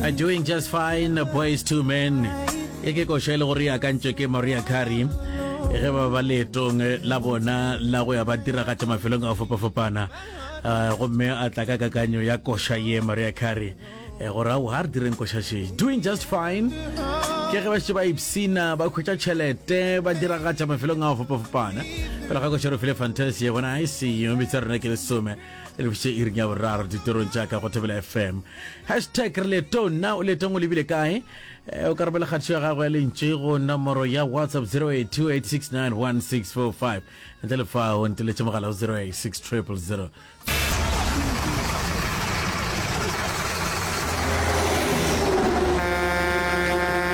are doing just fine boys two men e ke košo e le gore e akantšwe ke maria carey ge ba ba leetong la bona la go ya ba diragatša mafelong a fopafopana uh, gomme a tla ka kakanyo ya koša ye maria carey eh, gore ao ga re direng koša she doing just fine ke ge ba šetse ba ipsina ba khwetša tšhelete ba diragatša mafelong a fopafopana fela ga koša re file fantasy ye bona i see you bitsa rena ke lesome e re fiše iring ya boraro ditorong tša ka go thobela fm hashtag re letong na o letong o lebile kae Eh, o ka romela kgatišo ya gago ya lentše go nomoro ya whatsapp 0828691645 ntle le fa o nteletše mogala go 086000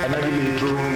ana di letong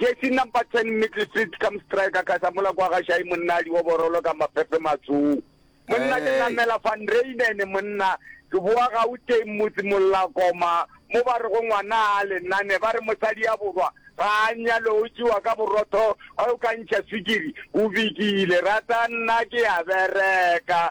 Jersey number 10 Middle Street come striker ka sa mola kwa ga Shai monna di oborolo ka maphephe matsong. Monna ke namela van Reinen monna ke boa ga o teng motse mollakoma mo ba re go ngwana a le nane ba re mosadi ya borwa ga a nyalo o tšiwa ka borotho a o ka ntšha swikiri o bikile rata nna ke ya bereka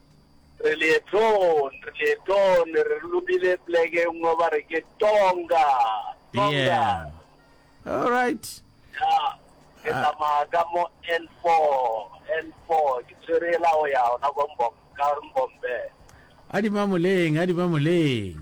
Re leetong, re leetong, ne re lobile pleke e nngwe ba re ke Tonga, Tonga. Yeah. All right. Ya, ke tsamaya ka mo N4, N4, ke tshwere e la go ya ona kwa Mbom, ka Mbombe. A di mamoleng, a di mamoleng.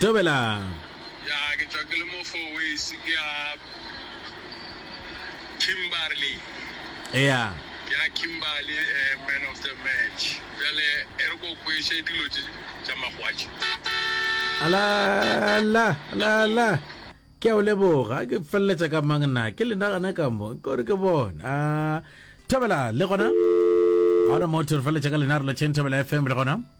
Tobelang. Ya, ke tšwa ke le mo Fourways, ke ya Kimberley. Eya. Ke ya Kimberley, eh, man of the match. Bjale e re ko kweše dilo tše tša magwatši. Ala, ala, ala, ala. Ke a o leboga, ke feleletša ka mang na? Ke le nagana ka mo, ke gore ke bona. Thobela, le gona? Ga ona motho, re feleletša ka lena, re lotšheng Thobela FM, le gona?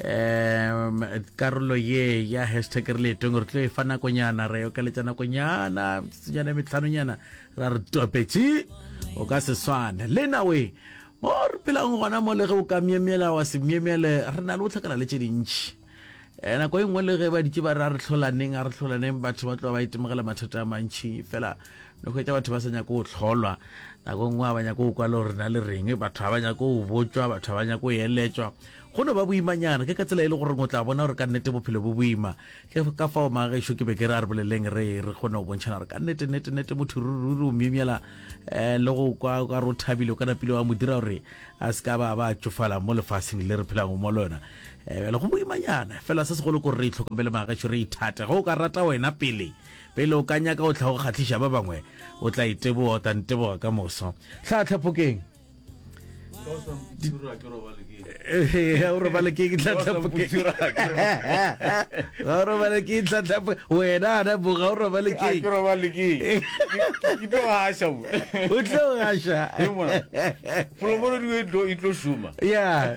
um karolo ye ya hashtag re leetong re tlo e fa nakonyana re okeletša nakonyana tsenyana metlhanonyana ra re topetše o ka se swane le nawe mo re phelang gona mo le ge o ka myemyela wa se myemyele re na le o tlhakana le tše dintšhi um nako e nngwe le ge ba ditše ba re a re tlholaneng a re tlholaneng batho ba tloba ba itemogela mathata a mantšhi fela le hwetša batho ba sa nyako go hlolwa nako nngwe ga ba nyako go kwa le gore na le reng batho ga ba nyako go botswa batho ga ba nyako go eletswa go no ba boimanyana ke ka tsela e le gore o tla bona gore ka nnete bophelo bo boima ke ka fao magešo ke be ke re a re boleleng re re kgone go bontšhana gore ka nnete nnete nnete motho rururi o myemyela um le go kwa ka re o thabile o ka napile wa mo dira gore a se ka ba ba tšofala mo lefaseng le re phelang mo lona um le go boimanyana fela se segolo kore re itlhokomele magešo re ithate go o ka rata wena pele Pele o ka nyaka go tla go kgahliša ba bangwe, o tla iteboga, o tla nteboga ka moso. Tlhahla phokeng. Ga o robale ke tlhahla phokeng. Ga o robale ke tlhahla phokeng. Wena ana bo ga o robale ke. Ke robale ke. Ke tlo gasha bo. O tlo gasha. Polokolo di e tlo e tlo shuma. Yeah.